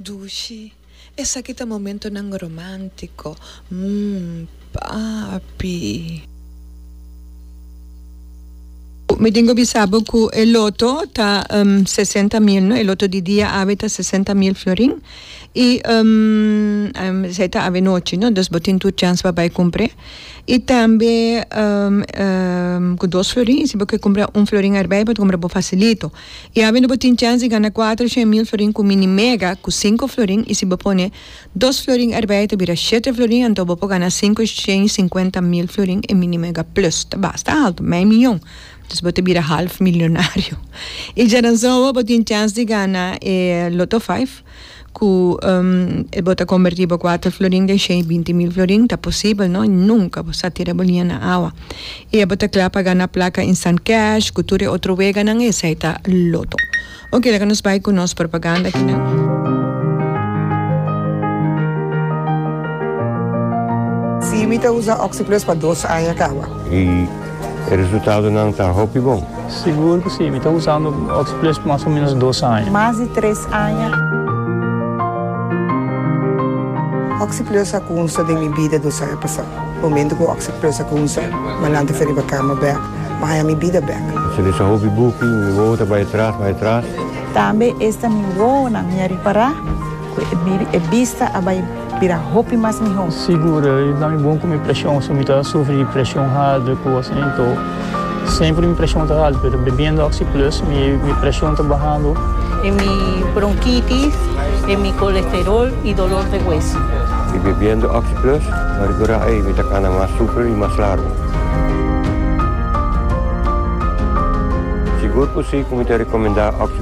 Dushi, Esaki ta momentonan romántico, mm, papi. Mi tin cu bisa bo cu e loto ta sesenta mil, no? E loto di dia awe ta sesenta mil florin y esai ta awe nochi, no? Dus bo tin tur chans pa bay cumpre. Y tambe cu dos florin, si bo kier cumpra un florin erbij, bo ta cumpra bo facilito. I habiendo bo tin chèns di gana kuater shen mil florin ku mini mega ku sinku florin i si bo pone dos florin erbei ta bira shete florin anto bo por gana sinku shen i sinkuenta mil florin e mini mega plus ta basta alto mei miyon dus bo ta bira half milionario i djaransowa bo tin chèns di gana e loto five ku e bo ta kombertí bo kuater florin den shei binti mil florin ta posibel no nunka bo sa tira bo liña na awa i e bo ta kla pa gana plaka instant cash ku tur e otro weganan esei ta loto oke laga nos bai ku nos propaganda akinan. Sí mi ta usa oxi plus pa dos aña kawa. E resultadonan ta hopi bon. Sigur cu si. Mi ta usando Oxplus mas o menos dos aña. Mas di tres aña. Oxplus a cunsa den mi bida dos aña pasa. Momento cu Oxplus a cunsa, Manan ta fe riba cama bek, ma aña mi bida bek. Su desa hopi buki, mi wowo ta bay atras, bay atras. Tambe esta mi wowonan mi a ripara cu e bista a bay. Bira hopi mas miho. Sigur i ta bon ku mi preshon so mi ta sufri di preshon haltu ku asin anto semper mi preshon ta haltu pero bebiendo oxi plus mi preshon ta bahando. E mi bronkitis e mi kolesterol i dolor de hueso. I bebiendo oxi plus ta rigora ei mi ta kana mas super i mas largu. Sigur ku si ku mi ta rekomendá oxi.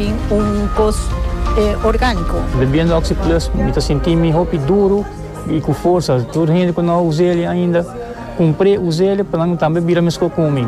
tin un kos orgániko. Bebiendo Oxi Plus mi ta sintinmi hopi duru i ku forsa. Tur hende ku no a us'e ainda, kumpr'e, us'e pa nan tambe bira meskos ku mi.